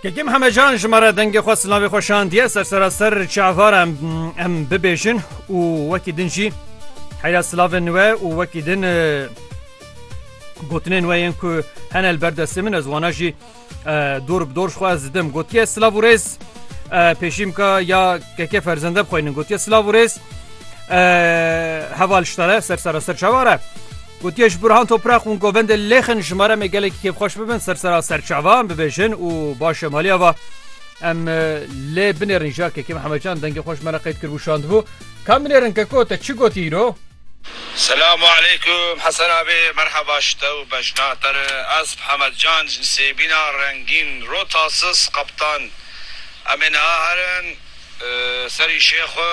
Kekim hemecan ji me re dengê xwe silavê xwe şandiye ser seraser çavar em em bibêjin û wekî din jî heyra silavên we û wekî din gotinên we yên ku henel berdestê min ez wana jî dor bi dor xwe ez didim gotiye silav û rêz pêşîmka ya keke ferzende bixwînin gotiye silav û rêz heval ji te re ser seraser çavar e. Gotiye ji Burhan Toprak û Govendê Lêxin ji maremê gelekî kêfxweş bibin ser sera serçava em bibêjin û baş em haliya va. Em lê binêrin ja Kekê Mehemedcan dengê xweş me re qeyd kiribû şandibû. Kam binêrin Keko te çi gotiye îro? Selam û aleykum Hesen Abî merheba ji te û bejna te re. Ez Mehemedcan ji Sêbîna Rengîn Rotasis Qeptan em ê niha herin serî şêxwe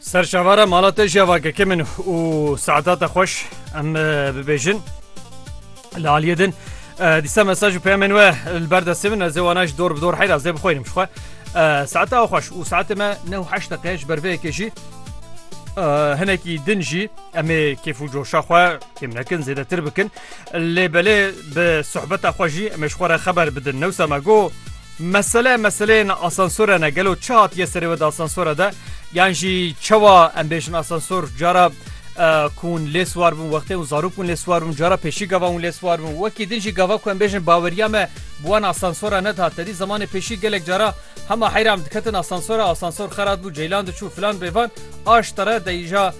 Ser şavara mala te jî vake ke min û saeta te xweş em bibêjin. Li aliyê din dîsa mesaj û peyamên we li ber destê min ez ê wana ji dor bi dor heyra ez ê bixwînim ji xwe. Saeta ew xweş û saetê me ne û heşt deqe ji ber vê yekê jî hinekî din jî em ê kêf û coşa xwe kêm nekin zêdetir bikin lê belê bi sohbeta xwe jî em ê ji xwe re xeber bidin newsa me got Mesele meseleyên asansore ne. Gelo çi hatiye serê we di asansora de? Yan jî çawa em bêjin asansor cara ku hûn lê siwar bûn wextê hûn zarok bûn lê siwar bûn cara pêşî gava hûn lê siwar bûn wekî din jî gava ku em bêjin baweriya me bi wan asansora nedihat tedî zemanê pêşî gelek cara hema heyra em diketin asansora asansor xera dibû ceylan diçû filan bêvan aş tere deyîja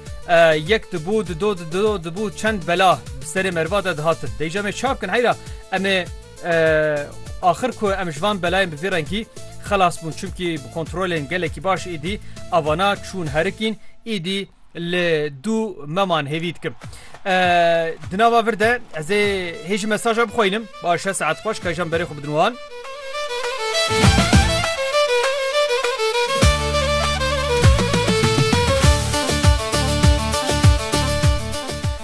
yek dibû dido dido dibû çend bela bi serê merva de dihatin deyîja me çap kin heyra em ê Axir ku em ji van belayên bi vî rengî xelas bûn çimkî bi kontrolên gelekî baş êdî avana çûn herikîn êdî li dû meman hêvî dikim. Di nava vir de ez ê hêjî mesaja bixwînim baş e saet xweş ka jam berê xwe bidin wan.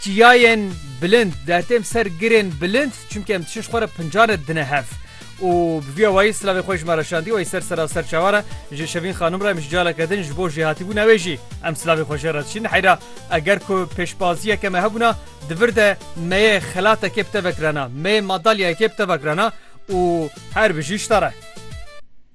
Çiyayên bilind dertêm ser girên bilind çimkî em diçin ji xwe re pincan re dine hev û bi vî awayî silavê xwe ji me re şandî wayî ser sera serçavan re ji Şevîn Xanim re em ji caleke din ji bo jêhatîbûna wê jî em silavê xwe jê re diçin heyra eger ku pêşbaziyeke me hebûna di vir de me yê xelatekê bi te vekirana me yê madalyayekê bi te vekirana û her bijî ji te re.